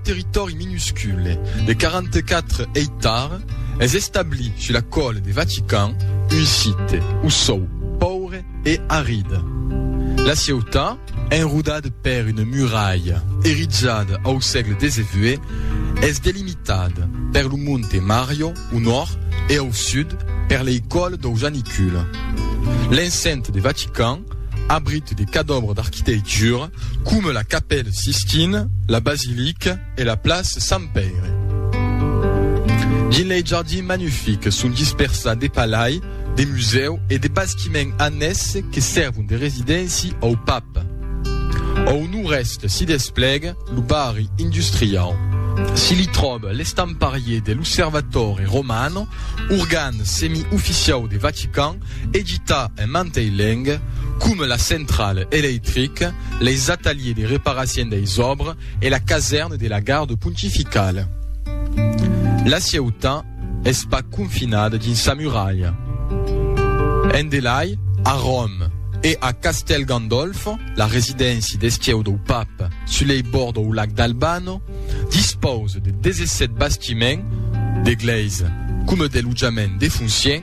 Territòri minuscule de 44 eitars es establi sus la còle de Vatican, un site o sòu paure e arid. La ciutat, enrodada per una muralha erizada au sègle xix, es delimitada per lo monte Mario au nòrd e au sud per lei còle dau Janicule. L'enceinte de Vatican Abrit de cadòbres d'arquiteitura coma la Capèla Sistina, la Basilica e la Plaça Sant Pèire. Dins lei jardins magnifics son dispersats de palai, de musèu e de bastiments annèsses que sèrvon de residéncia au Pap. Au nòrd-èst s'i desplega lo barri industriau. Se li tròba l'estamparier de l'Osservatore Romano, organ semi-oficiau de Vatican, Edita en mantei leng, coma la centrale electrique, leis ataliers de reparacion deis òbres e la casèrne de la garde pontificale. La cieuta es pas confinada dins sa muralha. En delai, a Ròm e a Castèl Gandolfo, la residéncia d'esquieu dau Pape sus lei bords dau lac d'Albano, dispause de 17 bastiments, d'eglèisa coma de lotjament de foncièn,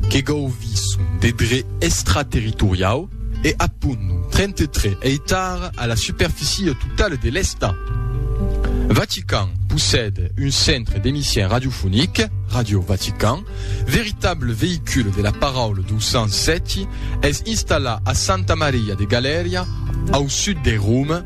que gauvison de dret extraterritoriau e a pond 33 eitar a la superficie totale de l'Estat. Vatican possède un centre d'emission radiofonic, Radio Vatican, veritable veïcule de la paraula dou Sant Sèti, es installat a Santa Maria de Galèria, au sud de Roma,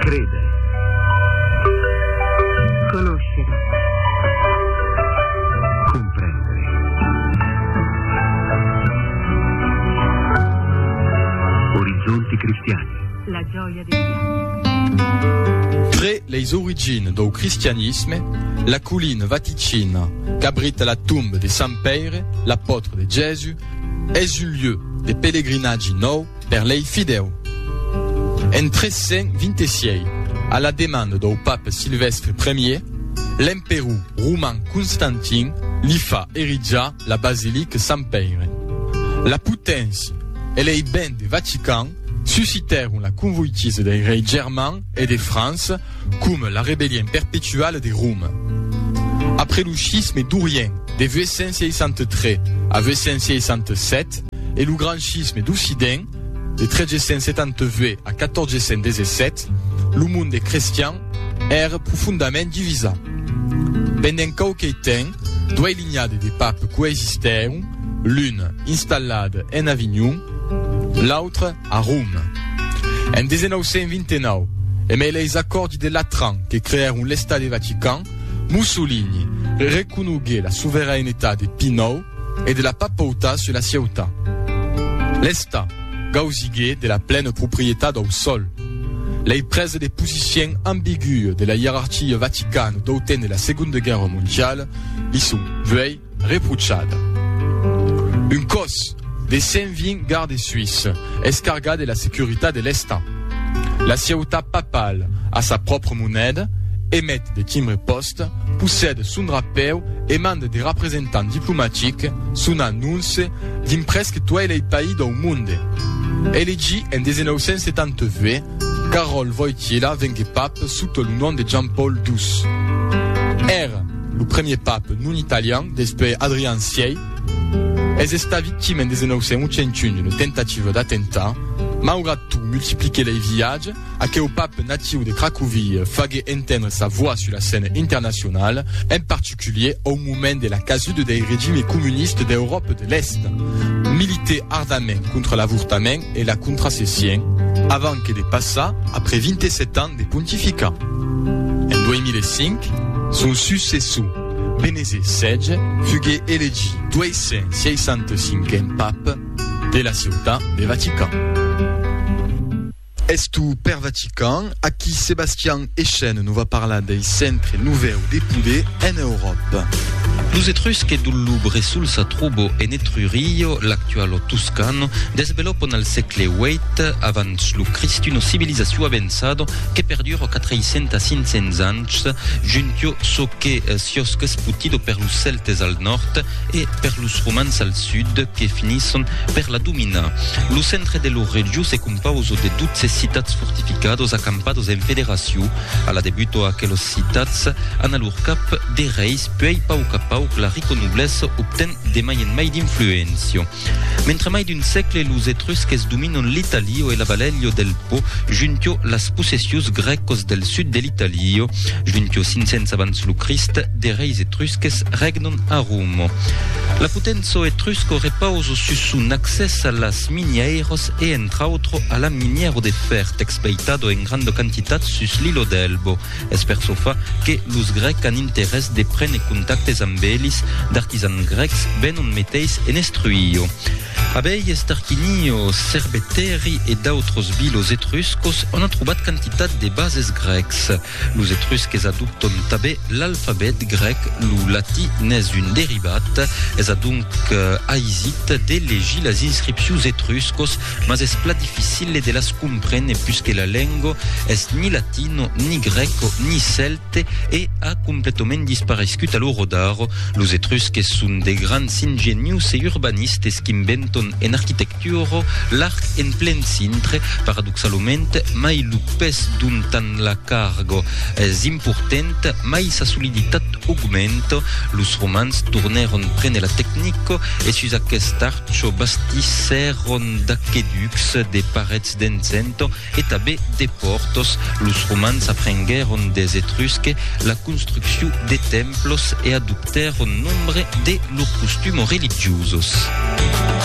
Créder. Conoscere. Comprendre. Orizzonti cristiani. La gioia di Tre les origines do cristianisme, la colline vaticina, qu'abrite la tombe de Sant Père, l'apôtre de Jésus, es un lieu de pèlerinatge nou Per lei fidèu. En 326, a la demanda dau pape Silvèstre Ier, l'emperor roman Constantin li fa erijar la basilica Sant Pèire. La poténcia e lei bèn de Vatican suscitèron la convoitisa dei reis germans e de França coma la rebellion perpetuala de Roma. Après lo schisme d'Orient de 863 a 867, e lo Grand Schisme d'Occident, de 1378 a 1417, lo monde crestian ère profondament divisat. Pendent quauquei temps, duei linhades de papes coexistèron, l'un installat en Avignon, l'autre a Rome. En 1929, e mai leis acòrdi de Latran que creèron l'Estat de Vatican, Mussolini reconogué la soverainetat de Pie ix e de la papauta se la sieuta. L'esta gausigué de la plena proprietat dau sol. Lei prese de posicien ambigüe de la ierarquia vaticana dau temps de la Segonda Guèrra Mondiala li son vuei reprochada. Un còs de 120 gardes suisses es cargat de la securitat de l'esta. La sieutat papala a sa pròpra moneda, emet de timbre pòst, L'Est possède son drapèu e mande de representants diplomatics, son anonce, dins prèsque tuei lei país dau monde. Elegi en 1978, Carol Wojtyla vengué pap sota lo nom de Jean-Paul ii. Ère lo premier pap non italian despuei Adrian vi. Es estat victima en 1981 d'una tentativa d'atemptat. Maugrat tot, multipliqué lei viatges, Aqueu pap natiu de Cracovie fagué entendre sa voix sus la scène internacionala, en particulier au moment de la casuda dei regimi comuniste d'Euròpa de l'Èst. Milité ardament contra l'avortament e la contracession, avant que de passar, après 27 ans de pontificat en 2005, son successor, Benese xvi, fugué elegit 265n pap de la ciutat de Vatican. Es tu per Vatican, aquí Sebastian Echen no va parlar dei centre novèu de poder en Euròpa. Los Etrusques dul Lubre sul sa trobo en Etrurio, l'actualo Tuscano, desvelopon al sègle vièit avans lo Crist una civilizacion avançado que perduro 400 a 500 ans juntio çò que siòsc esputido per los Celtes al nòrd e per los Romans al sud que finisson per la dominar. Lo centre de lo regiu se Pauso de 12 citats fortificados acampados en federacion a la debuto aquelos citats an a lor cap de reis puèi pauc a pauc la rico noblessa obten de mai en mai d'influéncia mentre mai d'un sècle los etrusques dominon l'Italio e la Valelio del Po juntio las possessius grècos del sud de l'Italio juntio 500 abans lo Crist de reis etrusques regnon a Romo la potenço etrusco repauso sus son accès a las minièiras e entre autro a la minièro de fèr t'expleitado en granda quantitat sus l'ilo d'Elbo. Es per çò fa que los grècs an interès de prene contactes amb elis, d'artisans grècs venon meteis en estruio. Abelhes, tarquinio, cerbetèri e d'autros bilos etruscos, on a trobat quantitat de bases grècs. Los etrusques adopton tanben l'alfabet grèc, lo latí n'es un derivat. Es adonc aisit de legir las inscripcions etruscos, mas es pla dificile de las comprene puisque la lenga es ni latino, ni grèco, ni cèlte e a completament disparescut a lo rodar. Los etrusques son de grands ingenius e urbanistes qu'inventon en arquitectura, Turo, l'arc en plen cintre, paradoxalament, mai lo pes d'un tant la cargo es importent, mai sa soliditat augmenta. Los romans tornèron prene la tecnico e sus aqueste archo bastissèron d'aqueducs, de parets d'encento e tabé de pòrtos. Los romans aprenguèron des etrusque la construcciu de templos e adoptèron nombre de lor costumo religiosos.